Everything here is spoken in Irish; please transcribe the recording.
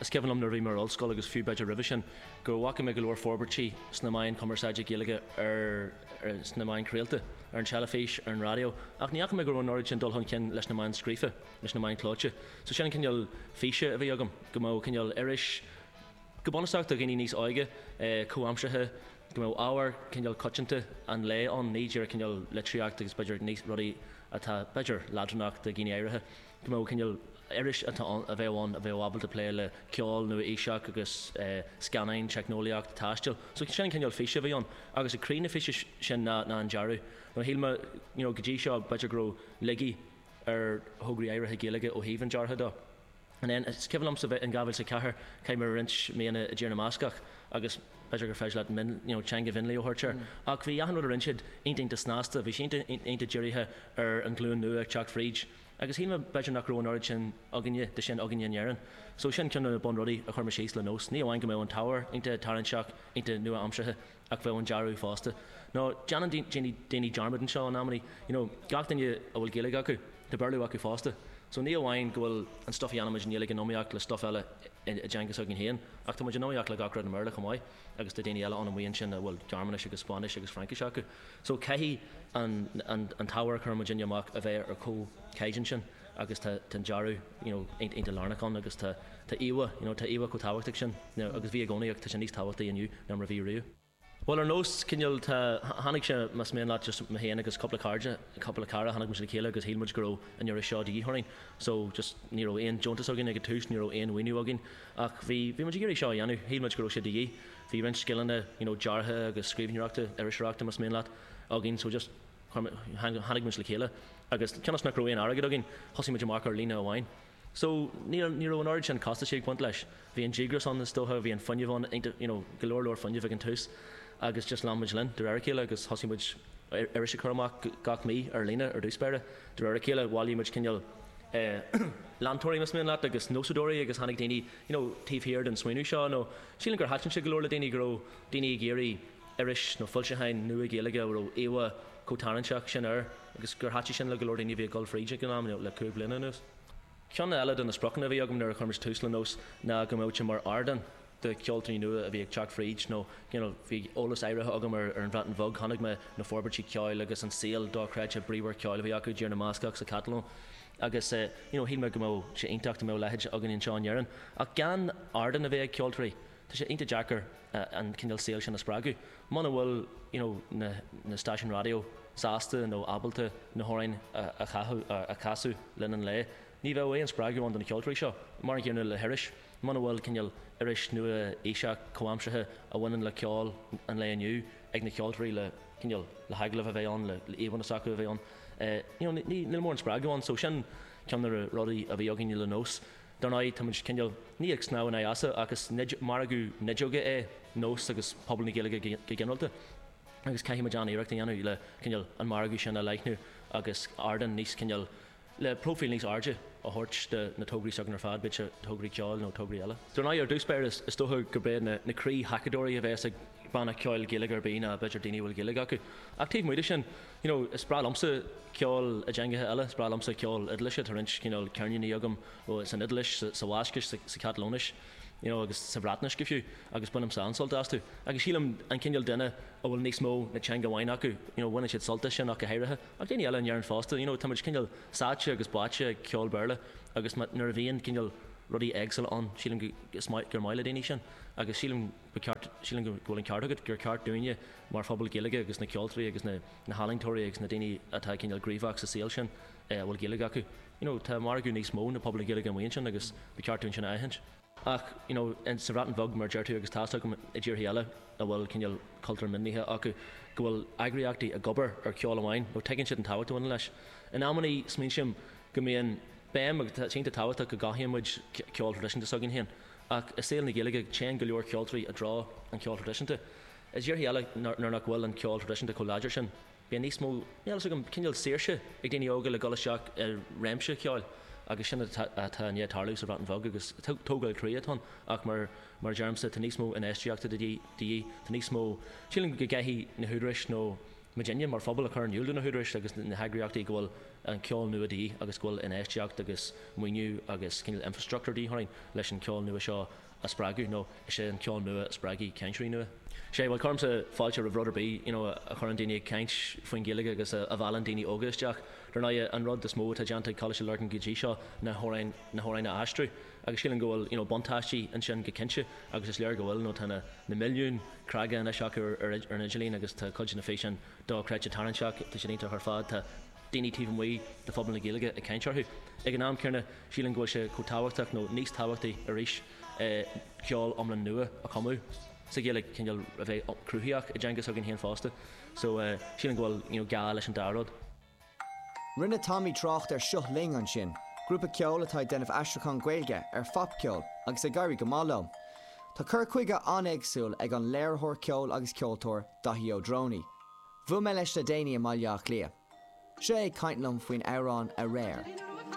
Is cuimhin liom nuair a bhí mé ar ollscoil agus fiú b'fhéidir roimhe sin go bhfaca mé go leor forbairtí sna meáin cumarsáide Gaeilge sna meáin chraolta, ar an teilifís, ar an raidió, ach ní fhaca mé go raibh an oiread sin dul chun cinn leis na meáin scríofa, leis na meáin clóite. So sin an cineál físe a bhí agam, go mbeadh cineál iris go bunúsach do dhaoine níos óige, comhaimseartha, go mbeadh ábhar cineál coitianta an lae ann, ní díreach cineál litríocht agus b'fhéidir rudaí atá b'fhéidir leadránach do dhaoine áirithe. mó cineál iris a bheadh ann a bheadh ábalta plé le ceol nua-aoiseach agus scannáin, teicneolaíocht taisteal. So sin an cineál físe a bhí ann agus ag croí na físe sin ná an dearadh. Now shíl mé you know go dtí seo b'fhéidir go raibh laigí ar thograí áirithe Gaeilge ó thaobh an deartha dó. And then is cuimhin liomsa bheith in 2004 chaith mé roinnt míonna i dTír na mBascach agus b'fhéidir gur féidir leat mion you know teanga mhionlaigh a thabhairt air ach bhí achan rud a rinne siad iontach iontach snasta, bhí sé iontach iontach dírithe ar an ghlúin nua ag teacht fríd. Agus shíl mé b'fhéidir nach raibh an oiread sin againne de sin againne in Éirinn. So sin ceann de na bunrudaí a chuir mé síos le Nós. Ní amháin go mbeadh an t-ábhar iontach tarraingteach, iontach nua-aimseartha, ach bheadh an dearadh fosta. Nó déanann daoine daoine dearmad anseo in amanna, you know, gach duine a bhfuil Gaeilge acu, tá Béarla acu fosta. So ní amháin go bhfuil an stuff a dhéanaimid i nGaeilge in iomaíocht le stuff eile i dteanga s'againn féin, ach táimid in iomaíocht le gach rud i mBéarla chomh maith, agus tá daoine eile ann amuigh ansin a bhfuil Gearmáinis agus Spáinnis agus Fraincis acu. So caithfidh an an t-ábhar a chuireann muidinne amach a bheith ar chomhchaighdeán sin agus tá tá an dearadh you know iontach lárnach ann agus tá tá íomhá you know tá íomhá chomh tábhachtach sin now agus bhí i gcónaí ach tá sé níos tábhachtaí inniu ná mar a bhí riamh. Bhuel ar nós cineál tá tháinig sé más mian leat just mé féin agus cúpla cairde cúpla cara tháinig muid le chéile agus shíl muid go raibh an iris seo de dhíth orainn so just ní raibh aon deontas againn ag an tús ní raibh aon mhaoiniú againn ach bhí bhí muid ag iarraidh seo a dhéanamh shíl muid go raibh sé de dhíth bhí roinnt scileanna you know deartha agus scríbhneoireachta, iriseoireachta más mian leat, againn so just chuir muid, tháinig muid le chéile agus cionn is nach raibh aon airgead againn thosaigh muid amach ar líne amháin. So ní, ní raibh an oiread sin costaisí ag baint leis. Bhí an díograis ann is dócha, bhí an fuinneamh ann iontach you know go leor leor fuinnimh ag an tús agus just lean muid linn de réir a chéile agus thosaigh muid iris a chur amach gach mí ar líne ar dtús báire. De réir a chéile bhailigh muid cineál eh leantóirí más mian leat agus nósadóirí agus tháinig daoine you know taobh thiar den smaoineamh seo nó, Sílim gur thaitin sé go leor le daoine go raibh daoine ag iarraidh iris nó foilseachán nua Gaeilge a raibh íomhá chomh tarraingteach sin air agus gur thaitin sin le go leor daoine a bhí ag dul fríd ag an am, le cúig bliana anuas. Ceann eile de na spriocanna a bhí agam nuair a chuir mise tús le Nós ná go mbeadh sé mar ardán do cheoltóirí nua a bhí ag teacht fríd nó you know bhí eolas áirithe agam ar an Bhreatain Bheag, chonaic mé na forbairtí ceoil agus an saol dochreidte bríomhar ceoil a bhí acu i dTír na mBascach sa Chatalóin. agus you know shíl mé go mbeadh sé iontach dá mbeadh a leithéid againn anseo in Éirinn ach gan ardán a bheith ag ceoltóirí tá sé iontach deacair an cineál saoil sin a spreagadh muna bhfuil you know na na stáisiúin raidió sásta nó ábalta na hamhráin a chaitheamh a chasadh le linn an lae ní bheadh aon spreagadh ann do na ceoltóirí seo mar an gcéanna le hiris muna bhfuil cineál iris nua-aoiseach comhaimseartha a bhaineann le ceol an lae inniu ag na ceoltóirí le cineál le hagallamh a bheith ann le le íomhanna s'acu a bheith ann you know ní níl mórán spreagadh ann so sin ceann de na rudaí a bhí againne le nós dar ndóigh táimid cineál ní ag snámh in aghaidh easa ach is margadh nideoige é nós agus pobal na Gaeilge go go ginearálta agus caithfimid an-iarracht a dhéanamh le cineál an margadh sin a leathnú agus ardán níos cineál le próifíl níos airde a thabhairt do na tograí s'againn ar fad, bíodh sé tograí ceoil nó tograí eile. Dár ndóigh, ar dtús báire, is dócha gurb iad na croíthacadóirí a bhéas ag banna ceoil Gaeilge ar bith ná b'fhéidir daoine a bhfuil Gaeilge acu. Ach taobh amuigh de sin, you know, is breá liomsa ceol i dteangacha eile, is breá liomsa ceol Iodáilise, tá roinnt cineál ceirníní agam san Iodáilis, sa Bhascais, sa Chatalóinis, you know, agus sa Bhreatnais go fiú, agus bainim an-sult astu. Agus sílim an cineál duine a bhfuil níos mó ná teanga amháin acu, you know, bhaineann siad sult as sin ach go háirithe. Ach daoine eile i ndáiríre fosta, you know, tá muid cineál sáite agus báite ag ceol Béarla agus má, nuair a bhíonn cineál rudaí éagsúla ann, sílim go, is maith, gur maith le daoine sin agus sílim go ceart, sílim go bhfuil an ceart agat, gur ceart dúinne mar phobal Gaeilge agus na ceoltóirí agus na, na healaíontóirí agus na daoine atá cineál gníomhach sa saol sin eh a bhfuil Gaeilge acu, you know, tá margadh níos mó ná pobal na Gaeilge amuigh ansin agus ba cheart dúinn sin a aithint. Ach, you know, in sa Bhreatain Bheag, mar a deir tú, agus tá's agam i dtíortha eile a bhfuil cineál cultúr mionlaithe acu, go bhfuil eagraíochtaí ag obair ar ceol amháin, nó tuigeann siad an tábhacht a bhaineann leis. In amannaí smaointím go mbíonn béim agus tá cinnte tábhachtach go gcothaíonn muid ceol traidisiúnta s'againn féin, ach i saol na Gaeilge téann go leor ceoltóirí i dtreo an cheoil thraidisiúnta i dtíortha eile nuair nach bhfuil an ceol traidisiúnta chomh láidir sin. Bíonn níos mó, níl a fhios agam, cineál saoirse ag daoine óga le dul isteach i réimse ceoil agus sin atá i ndiaidh tarlú sa Bhreatain Bheag agus tógáil croí atá ann ach mar a deirimse, tá níos mó infheistíochta de dhíth, tá níos mó, sílim go gcaithfidh na húdaráis nó muid fhéin mar phobal a chur in iúl do na húdaráis agus na heagraíochtaí go bhfuil an ceol nua de dhíth agus go bhfuil infheistíocht agus maoiniú agus cineál infreastruchtúr de dhíth orainn leis an cheol nua seo a a spreagadh nó is é an ceol nua a spreagfaidh cainteoirí nua. Sea, bhuel, cuirimse fáilte roimh rud ar bith, you know, a chuireann daoine ag caint faoin Ghaeilge agus a mheallann daoine óga isteach. Dar ndóighe, an rud is mó atá déanta ag Coláiste Lurgan go dtí seo na hamhráin, na hamhráin a aistriú agus sílim go bhfuil, you know, buntáistí ansin go cinnte agus is léir go bhfuil nó tá na, na milliúin clic anois acu ar, ar an idirlíon agus tá cuid de na físeáin dochreidte tarraingteach, tá siad iontach ar fad, tá. daoine taobh amuigh de phobal na Gaeilge ag caint orthu. Ag an am céanna, sílim go bhfuil sé chomh tábhachtach nó níos tábhachtaí arís é ceol iomlán nua a chumadh sa Ghaeilge, cineál a bheith cruthaitheach i dteanga s'againn féin fosta. So sílim go bhfuil you know gá leis an dá rud. Rinne Tommy trácht ar Seo Linn ansin, grúpa ceoil atá ag déanamh aistriúchán Gaeilge ar phopcheol agus ag éirí go maith leo. Tá cur chuige an-éagsúil ag an léiritheoir ceoil agus ceoltóir, Daithí Ó Drónaí, Bhuail mé leis le déanaí i mBaile Átha Cliath. Seo é ag caint liom faoin amhrán 'Aréir'.